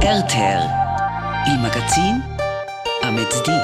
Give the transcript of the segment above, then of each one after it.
RTL Il magazin a mezdi.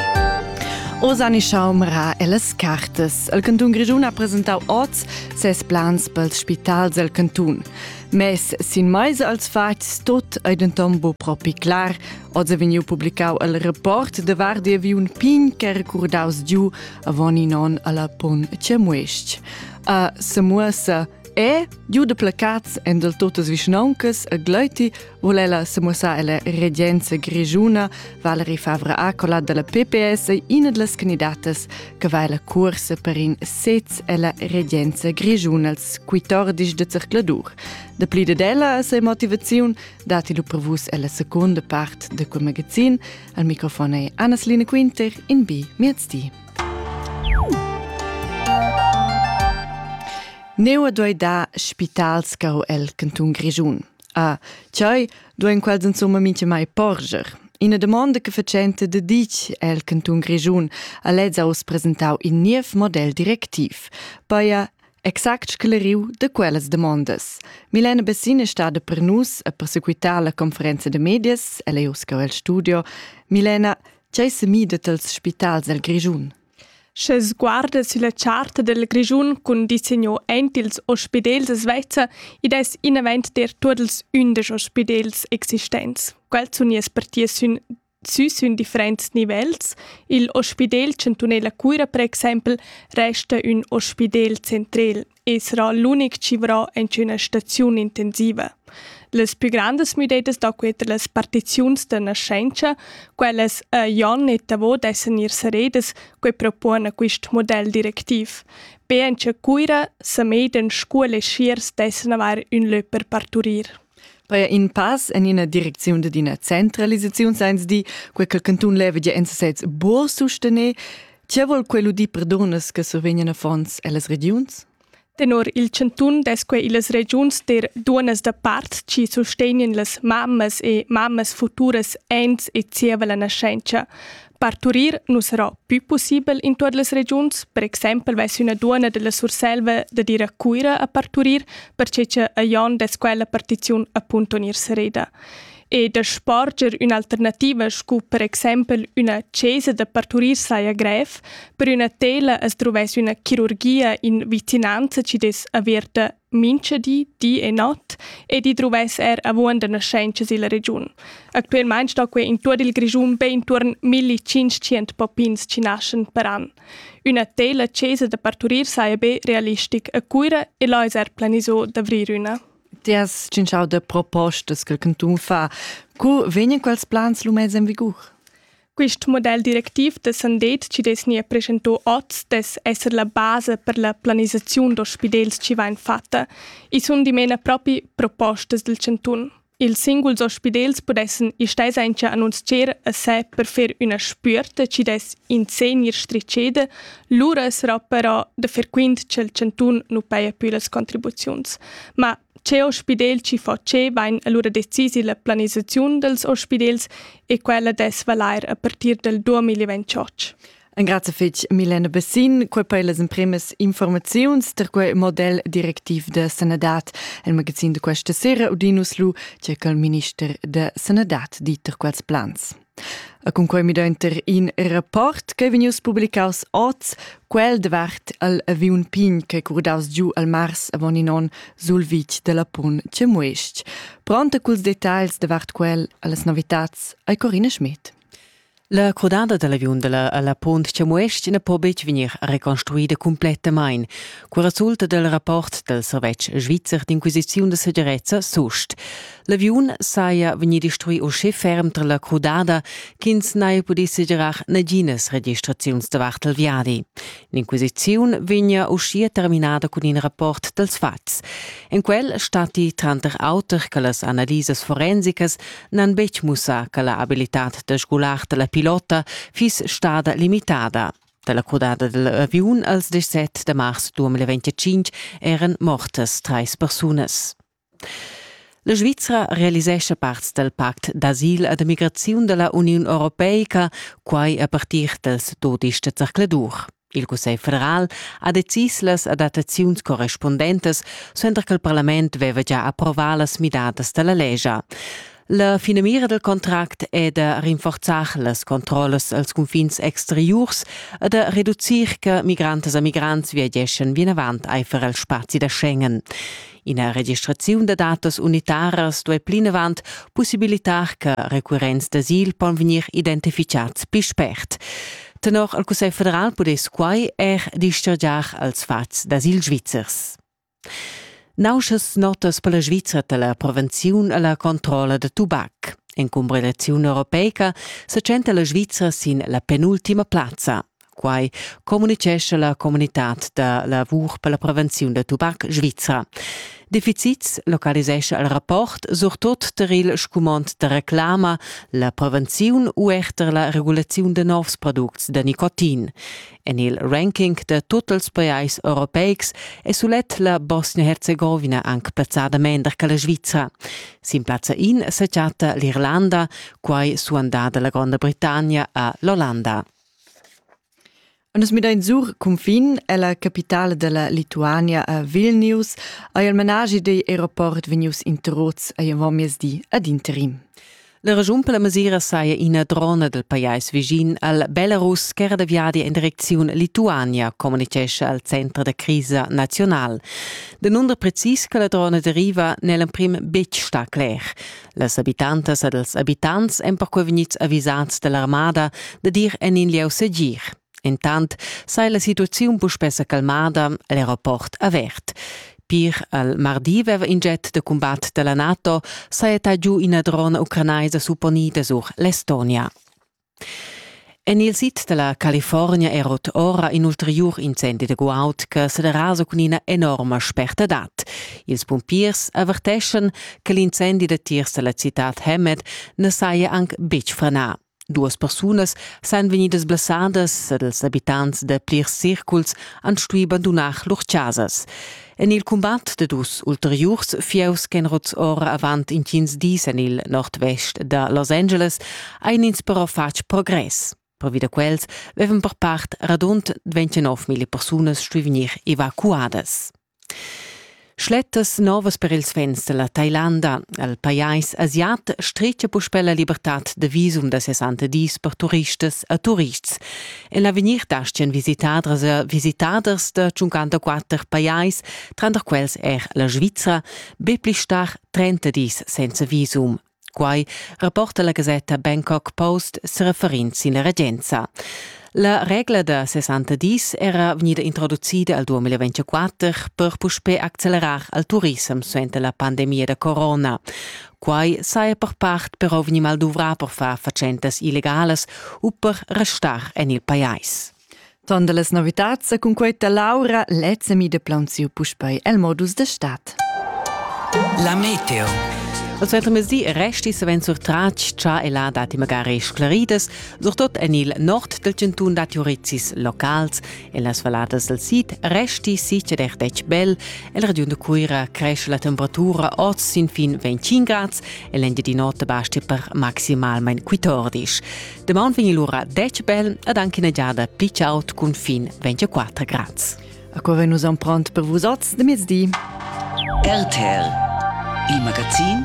Osani Schaumra e las cartas. Il cantun Grischun ha presentau oz ses plans pels spitals del cantun. Mes sin mais als fats tot ei denton bu propi clar. Oz è vegniu publicau il rapport de Vardi vi un pin che recordaus giu avon in on alla pon Cemuesc. A Semuasa E, giu de placats en del totas vischnauncas e gleiti, vole ella semuossar ella regenza grigiuna Valerie Favre Acola della PPS ina delle candidatas che va la cursa per in sez ella regenza grigiuna als 14 de circladur. De pli de della se motivaziun dati lu prevus ella seconda part de quel magazin. Al microfon è Annas Line Quinter in bi miezdi. Neu duei dar spitals caro el cantun Grischun. Ah, tgei duein quels insomma mintga mai porger? Ina domanda che facente de ditg el cantun Grischun a lez aus presentau in niev model directiv. Baia exact scleriu de quellas demandas. Milena Bessin è stada per nus a persequitar la conferenza de medias, ella è uscau el studio. Milena, Tgei semidet els spitals el Grischun? Sche sguarda sulla charta del Grischun cun disegno ent ils ospidels svezza, id es inavent der tuot ils undisch ospidels existents. Quels sun ies partie sün sü sün differents nivels. Il Ospidel Chantunela Cuira, per exempel, resta ün ospidel centrel. e sarà l'unic civrà en üna staziun intensiva. Las pü grandas müdedas da queta las partiziuns da nascenza, quellas a Jon e Tavo dessan ir saredas, que propon a quist model directiv. Be en cha Cuira, Samedan, Scuol e Schiers dessan avair ün lö per parturir. Paja in pass en ina direcziun dad ina centralisaziun sains dir, quei che il cantun leva gia en sesez buca sustener. Tge vol quel udir per dunas che survegnan affons ellas regiuns? Tenor il chantun dess quei illas regiuns ter dunas da part chi sustegnan las mammas e mammas futuras ens e zieva la naschentscha. Parturir nu sarà pü pussibel in tuot las regiuns, per exaimpel vess üna duonna della Surselva da dir a Cuira a parturir, perche cha a Jon dess quella partiziun appunto gnir sereda. E da sporger ün'alternativa scu per exaimpel üna chesa da parturir saja grev, per üna tela as druvess üna chirurgia in vicinanza chi dess averta Mincha di, di e not e di druvess er avuonda naschentscha silla regiun. Actuelmaing sto quei in tuot il Grischun be intuorn 1500 poppins chi naschan per an. Üna teila chesa da parturir saja be realistic a Cuira e là es er planiso d'avrir üna. Ti has cinciau de propostas che il cantun fa. Cu vegnan quels plans lu mez en vigur? Quist model directiv descendent chi dess gnir preschentà hoz dess esser la basa per la planisaziun d'ospidels chi vain fatta. I sun dimena propi propostas del chantun. Ils singuls ospidels pudessan istai sainza annunzier a se per fer üna spüerta chi dess in se gnir stricheda, lura sarà però da fer quint cha'l chantun nu paja pü las contribuziuns. Ma Cheu spidel chi fatschebain allura decisi la planisaziun dels ospidels e quella dess valair a partir del 2028. Engrazie fitg Milena Bessin, quei per las imprimas informaziuns per quei model directiv de sanadad. Il magazin de questa sera Udinus Lu, c'è col minister de sanadad dit per quels plans. E cun quei midaunter in rapport ch'ei vegnius publicaus oz, quel davart al aviun pign ch'ei curdaus giu al mars avon in onn sul vitg da Lapun Cemuest. Pronta culs detagls davart quel allas novitats ei Corina Schmidt. La crudada dell'aviun della alla Pont Cemuest ne po betg vegnir reconstruida complettamain. Quel resulta del rapport del servetsch svizzer d'inquisiziun de segirezza SUST. L'aviun saja vegnì destruì uschè ferm tar la crudada ch'ins n'haja pudì segirar naginas registraziuns davart il viadi. L'inquisiziun vegnia uschia terminada cun in rapport dals fatgs. En quel statti tranter auter che las analisas forensicas n'han betg mussà che la abilitad da sgular da la pilota fiss stada limitada. Dalla crudada dell'aviun als 17 de mars 2025 eran mortas treis persunas. La Svizra realisescha parts dal pact d'asil e d'emigraziun da la Uniun europeica, quai a partir dals dodisch da zercladur. Il Cussegl federal ha decis las adattaziuns correspundentas, suenter ch'il parlament veva gia approvà las midadas da la lescha. La finamira del contract è da rinforzar las controllas als confins exteriurs e da reducir che migrantas e migrants viageschan vinavant aifer el spazi da Schengen. Ina registraziun da datas unitaras duai plinavant possibilitar che recurrents d'asil pon vegnir identifichats pli spert. Tenor il Cussegl federal pudess quai er dischargiar als fats d'asil svizzers. Nauschas notas per la Svizra da la prevenziun e la controlla da tubac. En cumbrilaziun europeica sa tschenta la Svizra sin la penultima plazza. Quai communicescha la comunitad da lavur per la prevenziun da tubac svizra. Defizits localisescha il rapport surtut tar il scumond da reclama, la prevenziun u er tar la regulaziun da novs products da nicotin. En il ranking da tut ils pajais europeics è sulet la Bosnia-Herzegovina anc plazzada mender che la Svizra. Sin plazza in sa chatta l'Irlanda, quai suandada la Gronda Britannia a l'Ollanda. Nus midain sur cunfin ella capitale della Lituania a Vilnius ei il managi dei aeroport vegnius interrots ei avon miezdi ad interim. La regiun per la mesira saja ina drona dal pajais vischin al Belarus ch'era da viadi in direcziun Lituania, communitgescha al center da crisa nazional. Danunder precis che la drona deriva n'è l'emprim betg stà cler. Las abitantas ed els abitants èn perquai vegnids avisads da l'armada da dir en in lieu segir. Entant sei la situaziun puspè sa calmada, l'aeroport avert. Pir al mardi veva in jet de combat della NATO saetta giu ina drona ucranaisa supponida sur l'Estonia. En il sid della California erot ora in ulteriur incendi de guaud che se derasa cun ina enorma spertadad. Ils pumpiers averteschen che l'incendi de tiers della citad Hemet ne saia anc betg frenà. Duas persunas san vegnidas blessadas ed ils abitants da plirs circuls han stuì bandunar lur chasas. En il cumbat da dus ulteriurs fieus ch'èn rots ora avant intgins dis en il nord-vest da Los Angeles ein ins però fatg progress. Pervi da quels avevan per part radund 29.000 persunas stuì vegnir evacuadas. Schlettas novas per ils fans da la Tailanda. El pajais asiat stretga puspè la libertad da visum da ses antedis per turistas e turists. En l'avegnir dastgan visitadras e visitaders da 54 pajais, tranter quels er la Svizra, be pli star 30 dis senza visum. Quai rapporta la gasetta Bangkok Post sereferind sin la regenza. La regla da 60 dis era vegnida introducida al 2024 per puspè accelerar al turissem suenter la pandemia da corona. Quai saja per part però vegnì mal duvrà per far fatschentas illegalas u per restar en il pajais. Ton da las novitads sa cunquai da Laura lez mi de plaunsiu puspei el modus de stat. La meteo. Als Weltmesi resti savens surtratg cha e la dati magari sclaridas, surtot en il nord del cantun dati urizis locals, en las valladas del sid resti sice der dec bel, el region de Cuira cresce la temperatura oz sin fin 25 grads e l'ende di notte basti per maximalment 14. Damaun vegn lura dec bel ed anche una giada pli chaud cun fin 24 grads. A cura nus am pront per vus oz de mezdi. RTL, il magazin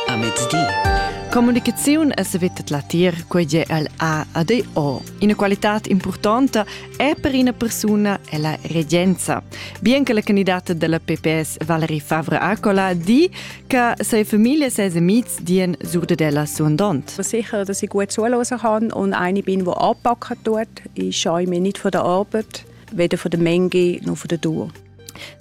a mezdi. Comunicaziun e sevitet latir, quei è el A ad O. Ina qualità importante è per una persona è la regenza. Bien che la candidata della PPS Valerie Favre Acola di Ca sei familie ses amics dien sur de della suondont. Sicher, dass ich gut zulassen kann und eine bin, die anpacken tut. Ich scheue mich nicht von der Arbeit, weder von der Menge noch von der Dur.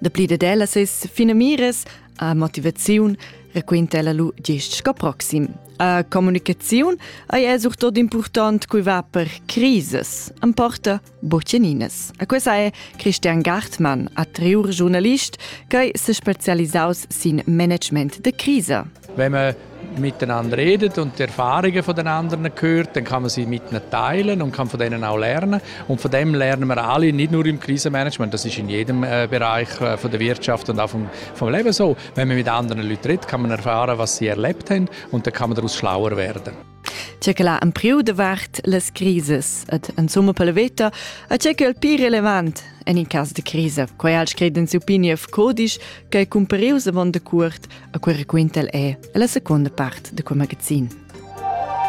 Dapli de della ses fine mires a motivaziun raquinta ella lu gest sco proxim. A comunicaziun ei è surtot important cui va per crises. Am porta Boceninas. A questa è Christian Gartmann, attriur giurnalist, che è spezialisaus sin Management de Krise. Wenn man miteinander redet und die Erfahrungen von den anderen hört, dann kann man sie mit ihnen teilen und kann von denen auch lernen. Und von dem lernen wir alle, nicht nur im Krisenmanagement, das ist in jedem äh, Bereich äh, von der Wirtschaft und auch vom, vom Leben so. Wenn man mit anderen Leuten redet, kann man erfahren, was sie erlebt haben und dann kann man daraus schlauer werden. C'è che l'ha empriu davart las crises ed en summa per la veta a c'è che il più relevant en il caso de crisa, quai al scred in Supinief Codisch che è cumparius avant de cuort a cui raquinta el è la seconda part de quel magazin.